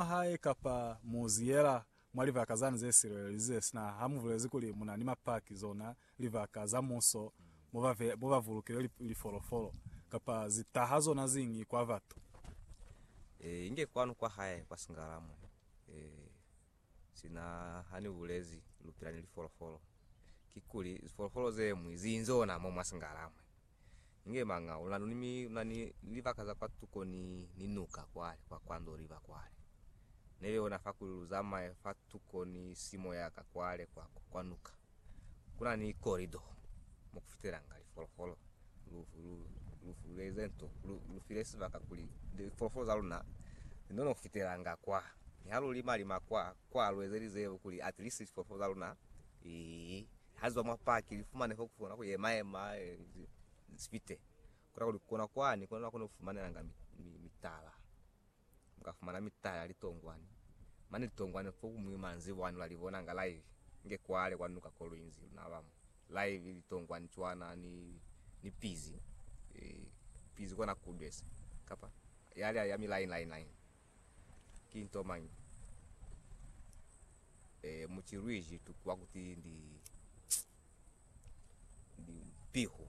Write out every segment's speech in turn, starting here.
mwa hae kapa mu zi yela mwa libaka zani ze silelelize, sina ha mu bulezi kuli mu na ni mapaki, zona libaka za muso mo ba, mo ba bulukile li, lifolofolo, kapa zi taha zona ziñi kwa batu. Ee, inge kwanu kwa hae kwa singala mo. Ee, sina ha ni bulezi lu pila ni lifolofolo, kikuli lifolofolo ze ñwi zi inzona mo mwa singala mo. Inge manga una luni mi una ni libaka za kwa tuko ni, ni nuka kwale, kwa, kwa Ndoliva kwale. Nebe ona fa kuli lu zamaye fa tuko ni simo ya ka kwale kwa, kwa, kwa nuka. Kuna ni korido mo kufitelanga lifolofolo. Lu, lu, lu fuleze nto, lu, lu file sibaka kuli lifolofolo za luna li none kufitelanga kwa. Ni ha lu lima, lima kwa, kwa lu ezelize kuli at least lifolofolo za luna li, Ha zwa mwa paki li fumane fo kukona ku yema yema sifite kona kuli kona kwani kona nakona kufumanelanga mitala muka fumana mitala litongwani mane litongwani fo kumwi manzi bwani ula libona nga live nge kwale kwa nuka kolwinzi na bamo live litongwani chwana ni ni pizi e pizi kona kudwesa kapa yale ya mi line line line Ki nto mañi e mucilwiji tukwa kuti ndi piho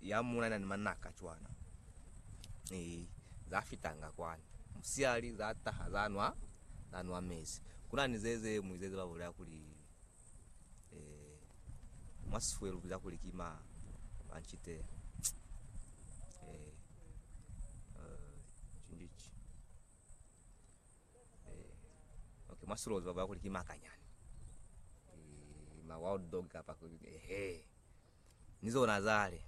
ya muna na ni manaka cwana e za fitanga kwani musiali za taha za nwa za nwa mezi kuna ni zeze muizeze ba bulaya kuli eh, mwa sifwe lu biza kuli ki ma manchite eh, eh, chinjichi eh, okay, mwa silozi ba bala kuli ki makanyani eh, ma wild dog kapa ehe Ni zona zale,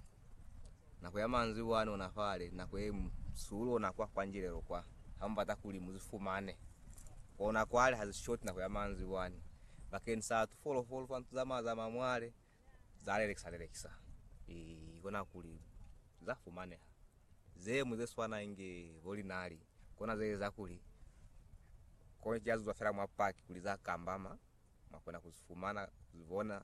nako ya manzwi bwani ona fale, nako ye msulu ona kwa kwa njilelo kwa, ha mubata kuli mu zifumane. Ona kwale ha zi shoti nako ya manzwi bwani, bakeni sa tu folofolo twa ntu za ma za ma mwale, za lelekisa lelekisa. I kona kuli za fumaneha. Ze mwi ze swana inge bo linali, kona ze eza kuli, koni ki ya zuzwa fela mwa paki kuli za kambama. Mwa kona ku fumana kuli bona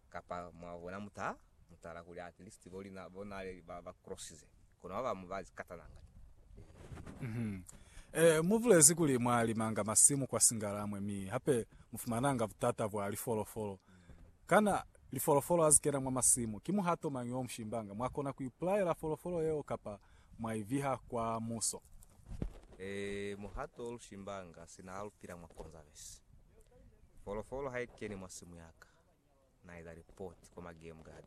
kapa mwa bona muta mutala kuli at least bo lina bo na le ba ba crossize kono ba bamu ba zikatana nga ni. Mhm. Eh, mu bulezi kuli mwa limanga masimu kwa Singalamwe mi hape mu fumananga butata bwa lifolofolo. Kana lifolofolo ha zi kena mwa masimu, ki muhato mañi o mu shimbanga? Mwa kona ku ipulaela folofolo yeo kapa mwa i viha kwa muso? Eh, muhato o lu shimbanga sina ha lu pila mwa Conservancy. Folofolo ha i keni mwa simu ya ka, na eza lipoti kwa ma game guard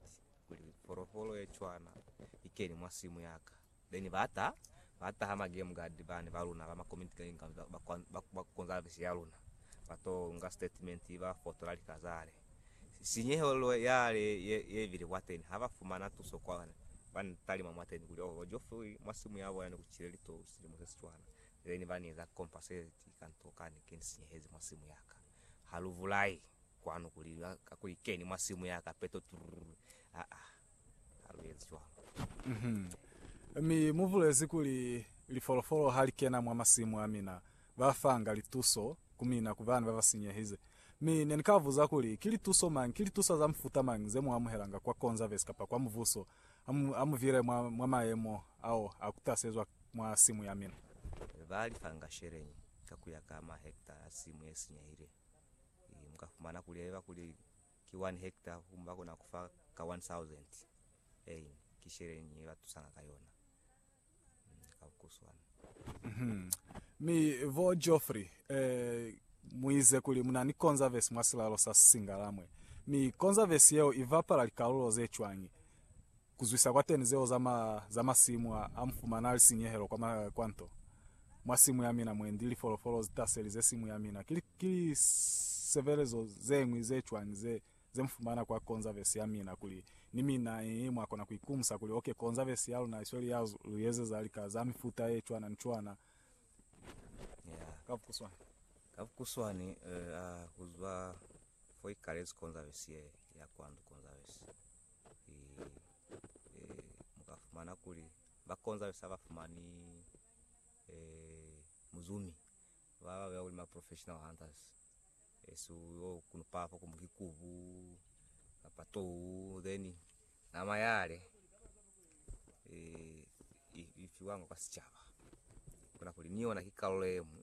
kuli folofolo ye cwana i keni mwa simu ya ka. Then ba ta, ba taha ma game guard bani ba luna ba ma community kanyi ba, ba, ba conservancy ya luna, ba to nga statement ba fotola lika zale. Sinyehelo yale ye, ye bile kwateni, ha ba fumana tuso kwani, ba ni talima mwateni kuli, Oh, ba Geoffrey mwa simu ya bona ne ku cile litowu silimo se si cwana. Ile ni ba ni eza kompa se ti ka nto ka ni ke ni sinyehezi mwa simu ya ka. Ha lu bulai kwanu ku li lwa ka kuli keni mwa simu ya ka peto trrr aa ha lu ezi cwalo. Mi mu bulezi kuli lifolofolo ha li kena mwa masimu a mina ba fanga lituso ku mina ku bana ba ba sinyehize. Mi ne ni ka buza kuli, Ki lituso mañi, ki litusa za mufuta mañi ze mu amuhelanga kwa Konzavesi kapa kwa Mubuso A mu vile mwa, mwa mayemo ao a kutasezwa mwa simu ya mina. Ba li fanga sheleñi ka ku ya ka mahektare a simu ye sinyehile. I, mu ka fumana kuli haiba kuli ki one hektare, humu ba kona ku fa ka one thousand. Ein, ki sheleñi ye ba tusanga ka yona? Mi vo Geoffrey eh, muize kuli muna ni konzavesi mwa silalo sa Singalamwe, mi konzavesi yeo ibapala likalulo ze cwañi kuzwisa kwateni zeo za ma za masimu a a mufumana ali sinyehelo kwa ma, kwa nto? Mwa simu ya mina mwendi lifolofolo zitaselize simu ya mina, ki li, ki lisevelezo zeñwi ze cwañi ze ze mufumana kwa konzavesi ya mina kuli ni mina i mwa kona ku ikumusa kuli, ok, konzavesi ya luna i sweli ya lu ezeza lika za mifuta ye cwana ni cwana. Yeah. Ka bukuswani. Ka bukuswani, eh, a ku zwa fo i kalezi konzavesi ye ya kwandu konzavesi i, e, mu ka fumana kuli ba konzavesi ha ba fumani, eh, muzumi ba ba beya kuli ma professional hunters. Yesu yo kuno papa kumbe ki kubu kapa tou then nama yale eh, ifiwanga kwa sicaba kuna kuli ni yona ki karolo emu